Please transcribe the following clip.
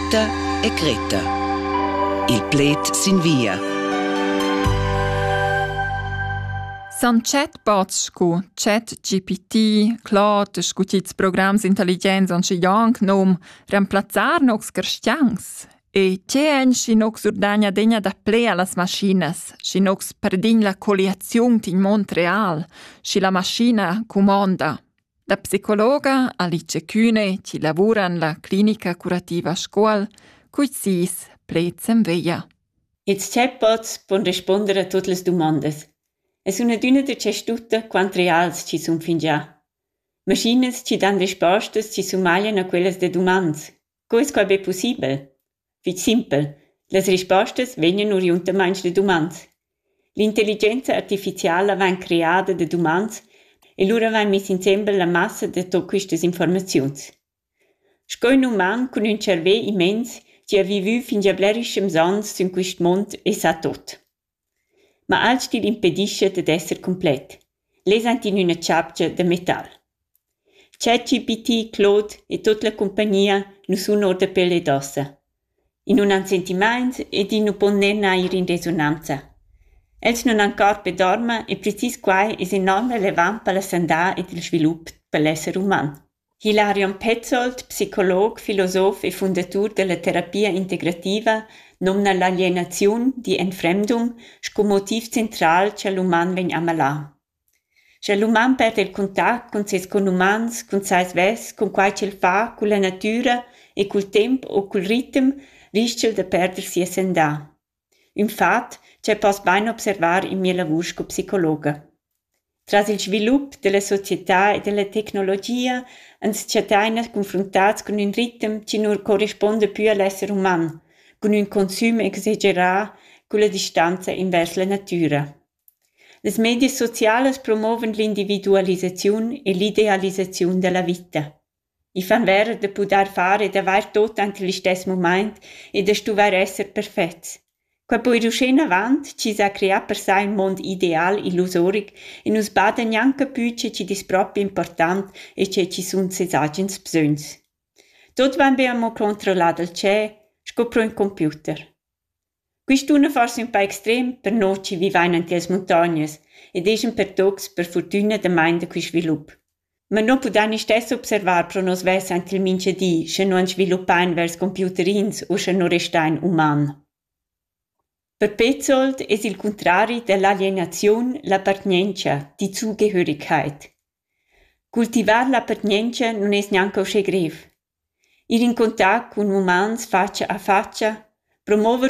Marta e Greta. Il pled sin via. San chat bots scu ChatGPT, Claude, scu tits programs intelligents on schi janc nom, remplazzar nocs carstiangs? E tge èn schi nocs urdagna degna da ple a las maschinas, schi nocs perdign la colliaziun tin mond real, schi la maschina cumonda? La psicologa Alice Kühne chi lavura in la clinica curativa Scuol culs sis pleds en veglia. Its chatbots pon risponder a tuot las dumondas. E sun adüna da tschestutta quant reals chi sun fingià. Maschinas chi dan respostas chi sumaglian a quellas da dumans. Co es quai be pussibel? fich simpel las rispostas vegnan oriundamaing da dumand. L'intelligenza artificiala vain creada da dumand e lura vain miss insembel la massa da tot quistas informaziuns. Sco ün uman cun ün tscharvè immens chi ha vivü fingià blerischems ans sün quist mond e sa tot. Ma alch'tin impedischa dad esser cumplet. Lez ans in üna chapcha da metal. ChatGPT, Claude e tut la cumpagnia nu sun our da pel ed ossa. I nun han sentimaints ed i nu pon ner neir in resonanza. Els nun han cor per dormer e precis quai es enorm relevant per la sandà ed il svilup pel esser uman. Hilarion Petzold, psicolog, filosof e fundatur dalla terapia integrativa, numna l'alienaziun digl enfremdum sco motiv central cha l'uman vegn amalà. Scha l'uman perda il contact cun ses conumans, cun sai svess, cun quai ch'el fa, culla natüra e cul temp u cul ritem, rischa'l da perder sia sandà. ün fat cha poss bain observar in mia lavur sco psicologa. Tras il svilup della società e della tecnologia ans chattain confruntats cun ün ritem chi nu correspuonda pü a l'esser uman, cun ün consüm exagerà culla distanza invers la natüra. Las medias socialas promovan l'individualisaziun e l'idealisaziun da la vita. i fan vera da pudair far ed avair tot ante listess mumaint e da stuvair esser perfets quai po ir uschè inavant chi s'ha creà per sai ün mond ideal illusoric e nus bada gnanca pü che chi dis propi important e che chi sun sez agens bsögns. Tot vain be amo controllà dal tschep sco pro ün computer. Quist dunna forsa ün pa extrem per no chi vivain ant illas muntognas ed ais ün per tuots per furtüna damain da quist svilup. Ma no pudain istess observar pro nos vess ant il mincha di, sche nu ans sviluppain vers computerins u sche nu restain uman. Per Petzold es il cuntrari da l'alienaziun l'appartgnientscha, die Zugehörigkeit. Cultivar l'appartgnientscha nun es gnanca uschè grev. Ir in contact cun umans fatscha a fatscha, promover